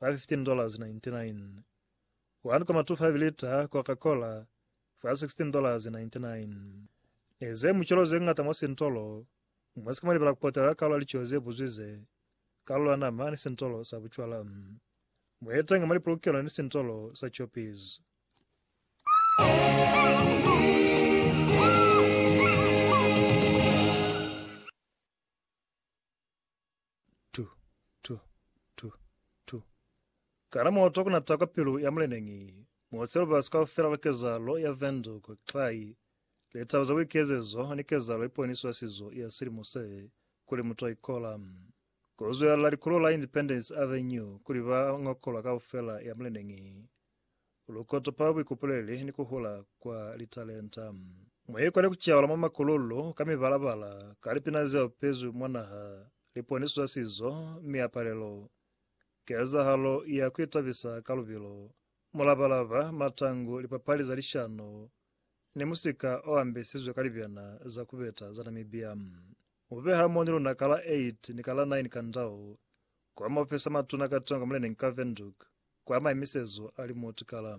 fa $15.99, one kwa matufavi lita Coca Cola fa $16.99. Ne ze mucelo ze ngata mwa sintolo, mwa si ka mwa libala ku patala kalu ya lico ze buzwize, kalu ya nama ni sintolo sa bucwala. Mwa itanga mwa lipolokelo ni sintolo sa Choppies. Tu, tu, tu, tu. Ka na moto ku na ta kwa pilu ya muleneñi, mo se lubasi kaufela lwa kezahalo ya Windhoek, Xai, litaba za buikezezo ni kezahalo ye poniso ya sizo ya silimo se, kuli mutu a ikola. Ku zwelela likulo la Independence Avenue kuli ba ngokolwa kaufela ya muleneñi. Lu kotopa buikupuleli ni ku hula kwa litalenta. Mu ikole ku caula mwa makululu ka mibala-bala, ka lipina ze opezwi mwa naha, liponiso za sizo, miapalelo, kezahalo ya ku itabisa ka lubilo, mulaba-laba, matangu, lipapali za lishano, ni musika o ambesizwe ka libyana za ku beta za Namibia. U beha moni luna ka la 8 ni ka la 9 ka ndau, kwa maofisi a matuna ka tongo muleneñi ka Windhoek, kwa maimisezo a limuti kala.